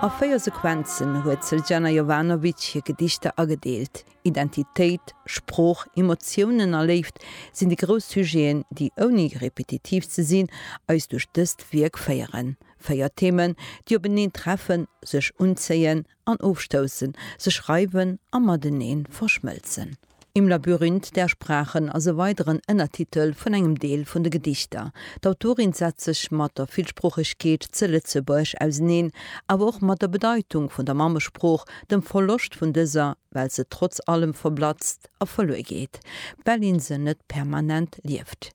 A véier Sequenzen huet d'Sljana Jovanovic hir Gedichter agedeelt. Identitéit, Sprooch, Emotiounen a Léift sinn déi grouss Sujeten, déi, ouni repetitiv ze sinn, eis duerch dëst Wierk féieren. Véier Themen, déi openeen treffen, sech unzéien, an ofstoussen, sech reiwen a mateneen verschmëlzen. Im Labyrinth der Sprachen ass e weideren Ënnertitel vun engem Deel vun de Gedichter. D'Autorin setzt sech mat der Villsproochegkeet ze Lëtzebuerg auseneen, awer och mat der Bedeitung vun der Mammesprooch, dem Verloscht vun dëser, well se trotz allem verblatzt a verluer geet, well een se net permanent lieft.